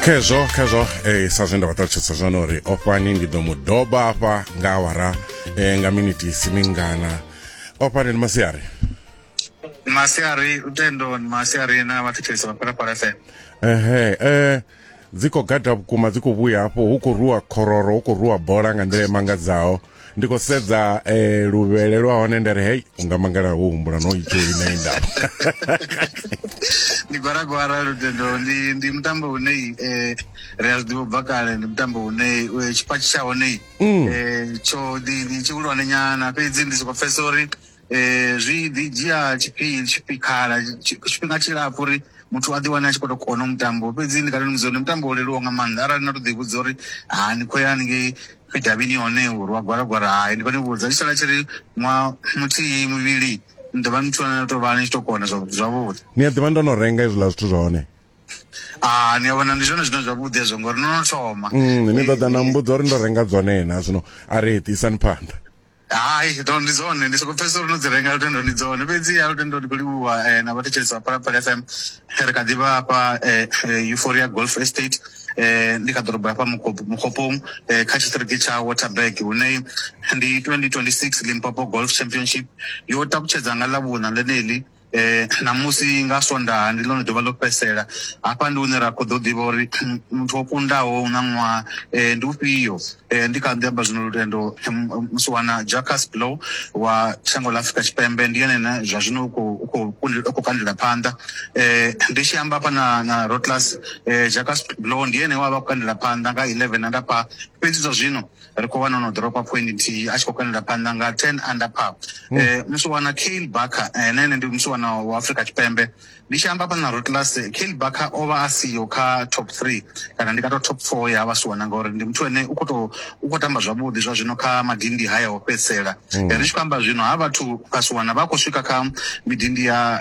khezwo khezwo eh, sa zwe nda vha ṱalutshedza zwone uri o fhani ndi ḓo mu doba hafha nga awara eh, nga miniti isi mingana o fhani ndi masiari masiari tendoni masiari na vhathethesi vha phalaphala fm ehe eh, dzi khou gada vhukuma dzi khou vhuya hafho hu khou rwiwa khororo hu khou rwiwa bola nga nḓila i mangadzaho ndi khou sedza eh, luvhele lwa hone nda ri hei unga mangala wo humbula no itsho ine indaba ndi gwaragwara lutendo ndi ndi mutambo une eh, ri a zwi ḓivha ubva kale ndi mutambo une eh, tshipatshi tsha hone eh, tsho ndi ndi tshihulwane nyana fhedzi ndi soko pfesa uri um zwi ḓi dzhia tshifhinga tshikhala tshi- tshifhinga tshilapfu uri muthu a ḓi wane a tshi khou to kona mutambo fhedzi ndi kale ndi mudza uri ndi mutambo wo leluwa nga maanḓa arali na to ḓi vhudza uri ha ni khou ya haningei fidavhini hone uri wa gwalagwala hai ndi khou ni vhudza tshi sala tshi ri ṅwaha muthihi mivhili ni ḓovha ni thona to vha ni tshi to kona zwa- zwavhuḓi ni a ḓivha ndo no renga hezwiḽa zwithu zwa hone ah ni a vhona ndi zwone zwine zwavhuḓi hezwo ngori no no thoma Mm, ni ḓo ḓa na mbudza uri ndo renga dzone na zwino a ri ḓisani phanḓa Hai, ndo ndi dzone ndi soko pfhesesa uri no dzi renga lutendo ndi dzone fhedziha lutendo ndi kho livhuwa na vhathetshelesi vha phalaphala fm ri kha ḓivha hafha euphoria golf estate ndi kha ḓorobo hafha mukhopo mukhoponi kha tshiṱiriki tsha waterberg hune ndi twenty twenty six limpopo golf championship yo takutshedza nga ḽa vhuṋa ḽeneḽi um ṋamusi nga Swondaha ndi ḽone ḓuvha ḽo fhedzisela. Hafha ndi hune ra khou ḓo ḓivha uri muthu o kundaho hu na ṅwaha um ndi ufhio. Ndi kha ḓi amba zwino lutendo musiwana Jacques Blou wa shango ḽa Afrika Tshipembe ndi ene ane zwa zwino u khou khou u khou kandela phanḓa. Ndi tshi amba hafha na na Rotlas Jacques Blou ndi ene we a vha a khou kandela phanḓa nga 11 na ndafha fhedzi zwa zwino ri khou vha no no ḓoropa point nthihi a tshi khou kanela phanḓa nga ten under par um eh, musiwana cale barker eh, na ene ndi musiwana wa afrika tshipembe ndi tshi amba fhana rutlas cale barker o vha a siyo kha top three kana ndi ka to top four ya vhasiwana ngauri ndi muthu ene u khou tou u khou tamba zwavhuḓi zwa zwino kha madindi haya o fhedzisela mm. ri tshi khou amba zwino ha vhathu kasi wana vha khou swika kha midindi ya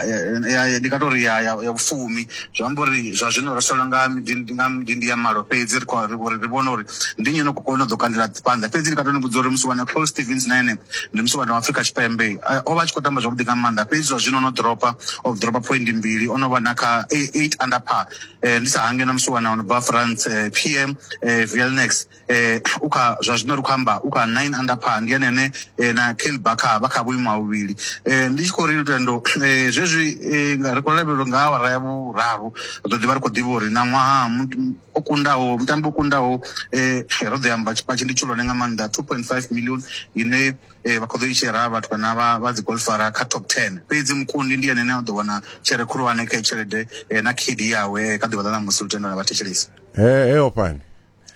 ndi nga tori ya ya vhufumi zwi amba uri zwa zwino ri solo nga midindi nga midindi ya malo fhedzi ri khou ri ri vhona uri ndi nnyi no khou kona u ḓo kandela phanḓa fhedzi ndi nga tou ni vhudza uri musi wana paul stevens na ene ndi musi wana wa afrika tshipembe o vha a tshi khou tamba zwavhuḓi nga maanḓa fhedzi zwa zwino no dropa of dropa point mbili o no vha na kha eight under par ndi sa hange na musi wana ono bva france pm eh, eh, vilnex eh, u kha zwa zwino ri khou amba u kha nine under par ndi ene ane eh, na kel bakha vha kha vhuimo ha vhuvhili eh, ndi tshi khou ri lutendo eh, zwezwi eh, nga- ri khou lavhelelwa nga awara ya vhuraru ri ḓo ḓivha ri khou ḓivha uri na ṅwaha mu- o kundaho mutambi o kundaho eh, ro ḓo amba tshipatshi ndi tshihulwane nga maanḓa 2.5 million ine eh, vha khou ḓo i shera vhathu kana vha vha dzi golfara kha top 10 fhedzi mukundi ndi ene ane a ḓo wana tshere khulwane kha i tshelede eh, na khidi yawe eh, kha ḓuvha ḽa ṋamusi lutendo na vhathetshelesi He, he ofhani.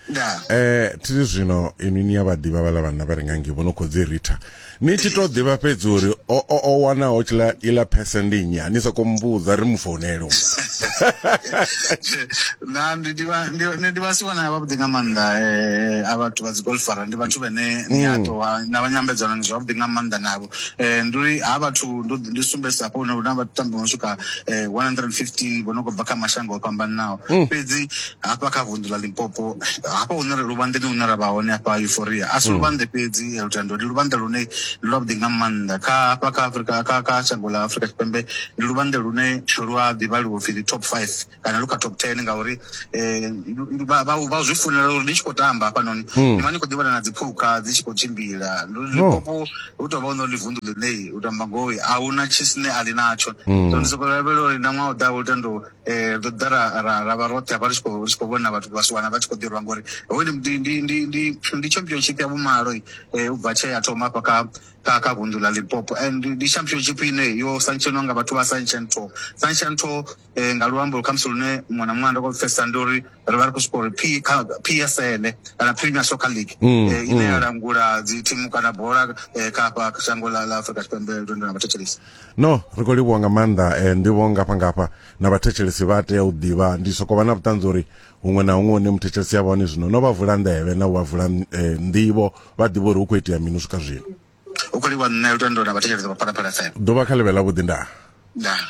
ndaa eh thiri zwino inwi ni ya vha ḓivha vhaḽa vhanna vha re nga ngei vho no khou dzi ritha ni tshi tou ḓivha fhedzi uri o o- o wanaho tshiḽa iḽa phese ndi nnyi a ni sokou mmbudza ri mu founele u na ndi ḓivha ndi ndi ḓivha si vhona vhavhuḓi nga maanḓa eh a vhathu vha dzi golfara ndi vhathu vhene ni a to wa- na vha nyambedzano ni zwavhuḓi nga maanḓa navho eh ndi uri ha vhathu ndo ndi sumbedzisa hafho hune huna vhatambi vho no swika eh 115 vho no khou bva kha mashango o fhambananaho fhedzi hafha kha vunḓu ḽa limpopo hafha hune luvhanḓeni hune ra vha hone hafha euforia a si mm. luvhanḓe fhedzi eh, lutendo ndi luvhanḓe lune ndi lwavhuḓi nga maanḓa kha hafha kha afrika kha kha shango ḽa afrika tshipembe ndi luvhanḓe lune lu a ḓivhaliwa upfhi ndi top five kana lu kha top ten ngauri um vha zwi funela uri ndi tshi khou tamba hafhanoni mm. ndi vha ndi khou ḓivhana na dziphukha dzi tshi khou tshimbila limpopo oh. hu tou vha u no ndi vunḓu ḽine u tamba ngoi a hu na tshisine a ḽi natsho mm. so ndi sokou lavhelela uri na ṅwaha u ḓaho lutendo um ri ḓa ra ra ra vha roṱhe hafha ri tshi khou ri tshi khou vhona vhathu vha si wana vha tshi khou ḓirwa ngori hoyu ndi ndi ndi ndi ndi championship ya vhumalo um u bva tshee ya thoma hafha kha kha kha vunḓu ḽa limpopo and ndi championship ine yo santshenwa nga vhathu vha santshen to santshen to um nga luambo khamusi lune muṅwe na muṅwe anda kho pfesesa ndi uri ri vha ri khou soko uri p kha p s l kana premier soccer league um ine ya langula dzi thimu kana bola um kha hafha shango ḽa ḽa afrika tshipembe lwendo na vhathetshelesi no ri khou livhuwa nga maanḓa eh, nḓivho ngafha ngafha na vhathetshelesi vha tea u ḓivha ndi soko vha na vhuṱanzi uri huṅwe na huṅwe une muthetshelesi ya vhone zwino no vha vula nḓevhe na u vha vula eh, nḓivho vha ḓivha uri hu khou itea mini u swika zwino u khou livhuwa nṋe lutendo na vhathetshelesi vha phalaphala fm ḓuvha kha ḽivhe ḽa vhuḓi ndaa ndaa